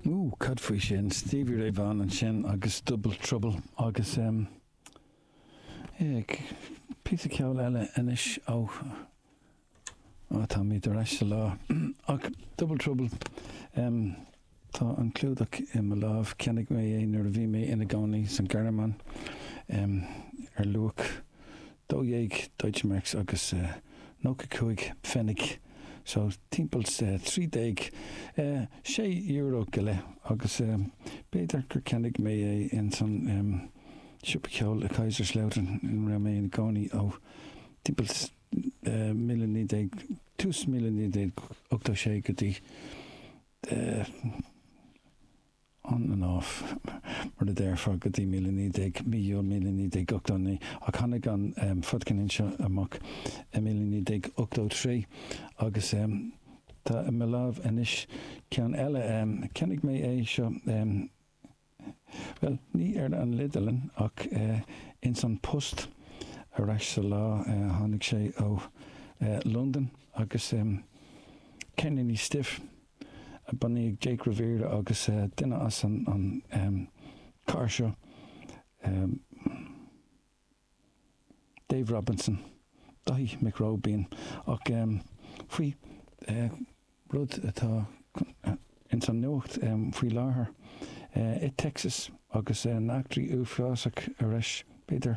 Woo, cad faoi sin? Stevie Ray Vaughan ansin agus Double Trouble agus eh, píosa ceoil eile anois ó, á táimid ar ais sa lá. Ach Double Trouble, em, tá an clúdach i mo lámh, cheannaigh mé é nuair a bhí mé ina gcónaí san Ghearmáin, em, ar luach 12 Deutschmarks agus 95 Pfennig, so timpeall trí déag, sé euro go leith, agus b'fhéidir gur cheannaigh mé é ins an siopa ceoil i Kaiserslautern ina raibh mé ina gcónaí ó timpeall míle naoi déag, tús míle naoi déag ochtó sé go dtí. on and off, mar a déarfá, go dtí míle naoi déag, mí Iúil míle naoi déag ochtó naoi, ach tháinig an fadcheirnín seo amach i míle naoi déag ochtó trí agus tá i mo láimh anois ceann eile. Cheannaigh mé é seo, bhuel, ní ar an idirlíon ach ins an post ar ais sa lá. Tháinig sé ó Londain agus ceirníní Stiff. Bunaíodh Jake Riviera agus duine as an gcathair seo, Dave Robinson, Daithí Mac Róibín, ach faoi rud atá ins an nuacht faoi láthair i Texas agus na heachtraí uafásach ar ais, b'fhéidir,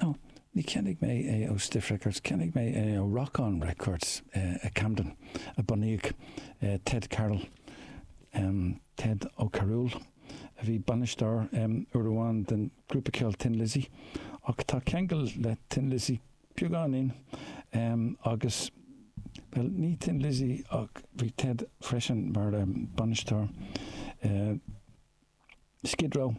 No, níor cheannaigh mé é ó Stiff Records, cheannaigh mé é ó Rock On Records i gCamden, a bunaíodh Ted Carroll, Ted Ó Carúil, a bhí bainisteoir uair amháin den grúpa ceoil Thin Lizzy, ach tá ceangal le Thin Lizzy beagáinín agus, bhuel, ní Thin Lizzy ach bhí Ted freisin mar bainisteoir. Skid Row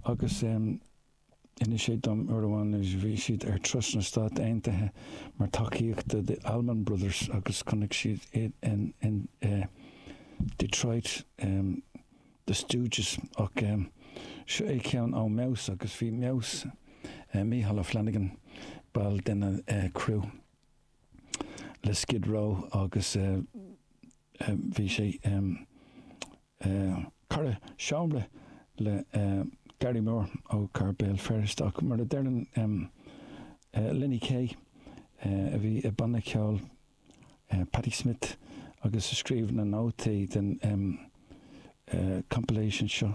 agus d'inis sé dom uair amháin nuair a bhí siad ar turas na Stát Aontaithe mar tacaíocht do The Allman Brothers agus chonaic siad iad in Detroit, The Stooges ach seo é ceann ó Mheabhus agus bhí Meabhus, Micheál Ó Flannagáin, ball den criú le Skid Row agus bhí sé ina chara seomra le Gary Moore ó cathair Bhéal Feirste ach mar a deireann Lenny Kaye a bhí i banna ceoil Patti Smith agus a scríobh na nótaí den compilation seo,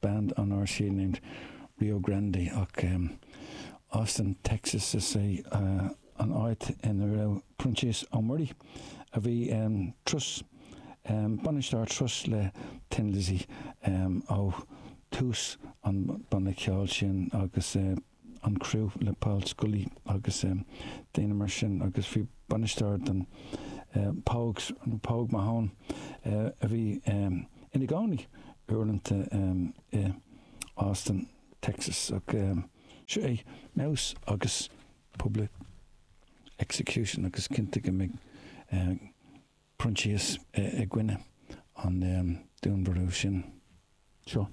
band on RCA named Rio Grande ach Austin Texas is ea an áit in a raibh Proinsias Ó Muirí a bhí ina turas, bainisteoir turais le Thin Lizzy ó thús an banna ceoil sin agus an criú le Paul Scully agus daoine mar sin agus bhí bainisteoir don Pogues, nó Pogue Mahone, a bhí ina gcónaí uaireanta i Austin, Texas ach. Seo é Mouse agus Public Execution agus cinnte go mbeidh Proinsias i gcoinne an dúnmharú sin. Seo.